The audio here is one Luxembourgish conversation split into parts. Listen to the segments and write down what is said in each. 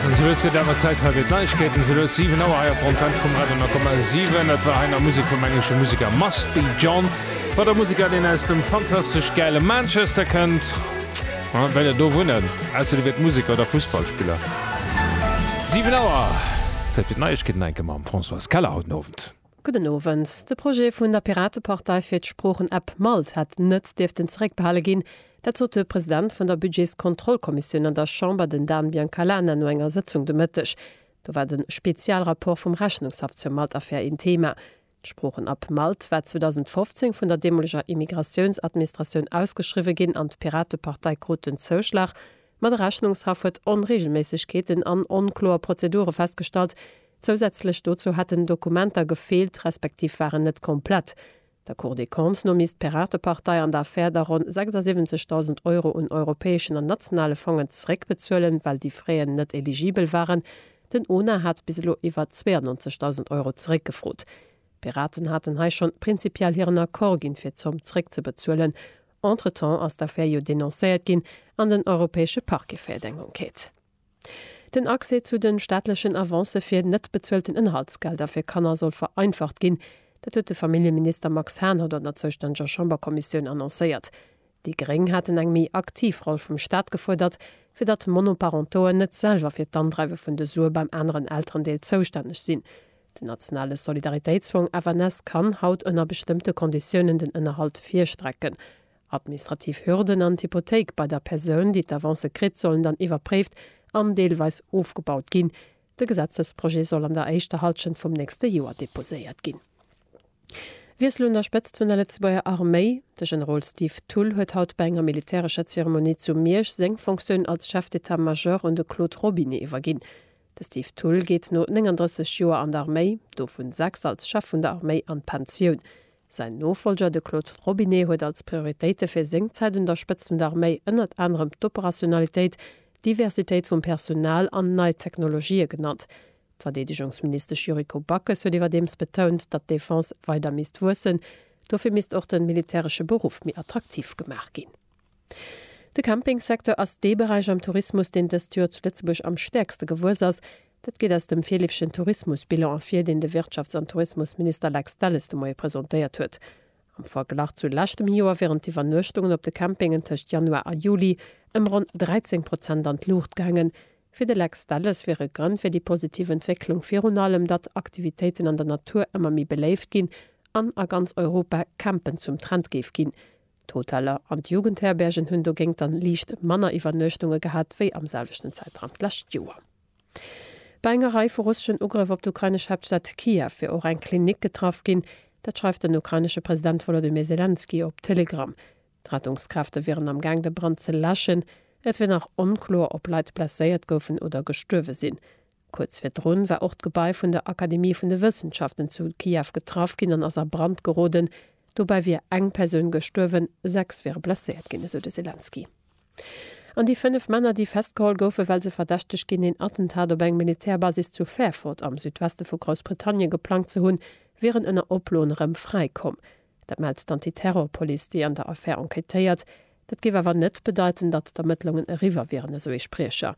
Sou lues gëtt awer Zäit hei fir d'Neiegkeeten. Se lues 7 Auer hei op der Antenne vum Radio 10,7. Dat war hei nach Musek vum englesche Museker Must Be John. Wat e Museker, deen aus dem fantastesch gäile Manchester kënnt. An well der do wunnen, ausser dir wiert Museker oder Fussballspiller. 7 Auer, Zäit fir d'Neiegkeeten enke mam Françoise Keller haut den Owend. Gudden Owend. De Projet vun der Piratepartei fir d'Sproochen-App malt hätt net dierften zeréckbehale ginn. Dat sot de President vun der Budgetskontrollkommissioun an der Chamber, den Dan Biancalana, no enger Sëtzung de Mëtteg. Do war de Spezialrapport vum Rechnungshaff zur Malt-Affär een Theema. D'Sproochen-App malt war 2015 vun der deemoleger Immigratiounsadministratioun ausgeschriwwe ginn an d'Piratepartei krut den Zouschlag, Ma de Rechnungshaff huet Onreegelméissegkeeten an onkloer Prozedure festgestallt. Zousätzlech dozou hätten Dokumenter gefeelt, respektiv waren net komplett. Der Cour des Comptes no misst d'Piratepartei an der Affär da ronn 76.000 Euro un europäeschen an nationale Fongen zeréckbezuelen, well déi fréien net eligibel waren. Den ONA hat bis elo iwwer 92.000 Euro zeréckgefrot. D'Piraten haten hei schonn prinzipiell hiren Accord ginn, fir d'Zomm zeréckzebezuelen. Entretemps ass d'Affär jo denoncéiert ginn an den europäesche Parquet féiert eng Enquête. Den Accès zu de staatlechen Avancë fir net bezuelten Ënnerhaltsgelder fir Kanner soll vereinfacht ginn. Dat huet de Familljeminister Max Hahn haut an der zoustännege Chamberkommissioun annoncéiert. Déi Gréng haten eng méi aktiv Roll vum Staat gefuerdert, fir datt Monoparentoen net selwer fir d'Andreiwe vun de Sue beim aneren Elterendeel zoustänneg sinn. Den nationale Solidaritéitsfong FNS kann haut ënner bestëmmte Konditiounen den Ënnerhalt virstrecken. Administrativ Hürden an d'Hypothéik bei der Persoun, déi d'Avance kritt, sollen dann iwwerpréift an deelweis ofgebaut ginn. De Gesetzesprojet soll an der éischter Hallschent vum nächste Joer deposéiert ginn. Wiessel un der Spëtzt vun der Lëtzebuerger Arméi, De Generol Steve Thull huet haut bei enger militärescher Zeremonie zu Miersch seng Fonctioun als Chef d'état-major un de Claude Robinet iwwerginn. De Steve Thull geet no 39 Joer an d'Arméi, dovun 6 als Chef vun der Arméi, an d'Pensioun. Säin Nofollger, de Claude Robinet, huet als Prioritéite fir seng Zäit un der Spëtzt vun der Arméi ënnert anerem d'Operationalitéit, d'Diversitéit vum Personal an nei Technologië genannt. D'Verdeedegungsministesch Yuriko Backes huet iwwerdeems betount, datt d'Defense weider misst wuessen. Dofir misst och de militäresche Beruff méi attraktiv gemaach ginn. De Campingsecteur ass dee Beräich am Tourismus, deen dëst Joer zu Lëtzebuerg am stäerkste gewuess ass. Dat geet aus dem virleefegen Tourismusbilan ervir, deen de Wirtschafts an Tourismusminister Lex Delles de Moie presentéiert huet. Am Verglach zu leschtem Joer wieren d'Iwwernuechtungen op de Campingen tëscht Januar a Juli ëm ronn 13 Prozent an d'Luucht gaangen. Fir de Lex Delles wiere Grënn fir déi positiv Entwécklung virun allem, datt Aktivitéiten an der Natur ëmmer méi beléift ginn an a ganz Europa Campen zum Trend géif ginn. D'Hoteller an d'Jugendherbergen hunn dogéint dann liicht manner Iwwernuechtunge gehat wéi am selwechten Zäitraum d'lescht Joer. Bei enger Rei vu russeschen Ugrëff op d'ukrainesch Haaptstad Kiew wier och eng Klinik getraff ginn. Dat schreift den ukrainesche President Wolodymyr Selenskyj op Telegram. D'Rettungskräfte wieren am Gaang de Brand ze läschen. Et wier nach onkloer, ob Leit blesséiert goufen oder gestuerwe sinn. Kuerz virdrun war och d'Gebai vun der Akademie vun de Wëssenschaften zu Kiew getraff ginn an ass a Brand geroden. Dobäi wier eng Persoun gestuerwen, sechs wiere blesséiert ginn, esou de Selenskyj. An déi fënnef Männer, déi festgeholl goufen, well se verdächteg ginn, een Attentat op eng Militärbasis zu Fairford am Südweste vu Groussbritannien geplangt ze hunn, wieren ënner Oploen erëm fräi komm. Dat mellt d'Antiterrorpolice, déi an der Affär enquêtéiert. Dat géif awer net bedeiten, datt d'Ermëttlungen eriwwer wieren, esou ee Spriecher.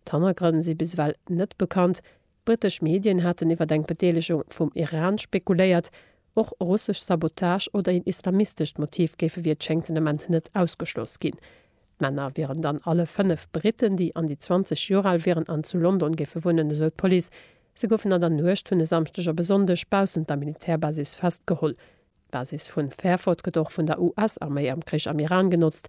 D'Hannergrënn si bis ewell net bekannt. Brittesch Medien haten iwwer eng Bedeelegung vum Iran spekuléiert. Och russesch Sabotage oder een islamistescht Motiv géife wéi et schéngt den Ament net ausgeschloss ginn. D'Männer wieren dann alle fënnef Britten, déi an déi 20 Joer al wieren an zu London géife wunnen, esou d'Police. Se goufen an der Nuecht vun e Samschdeg op e Sonndeg baussent der Militärbasis festgeholl. D'Basis vu Fairford gëtt och vun der US-Arméi am Krich am Iran genotzt.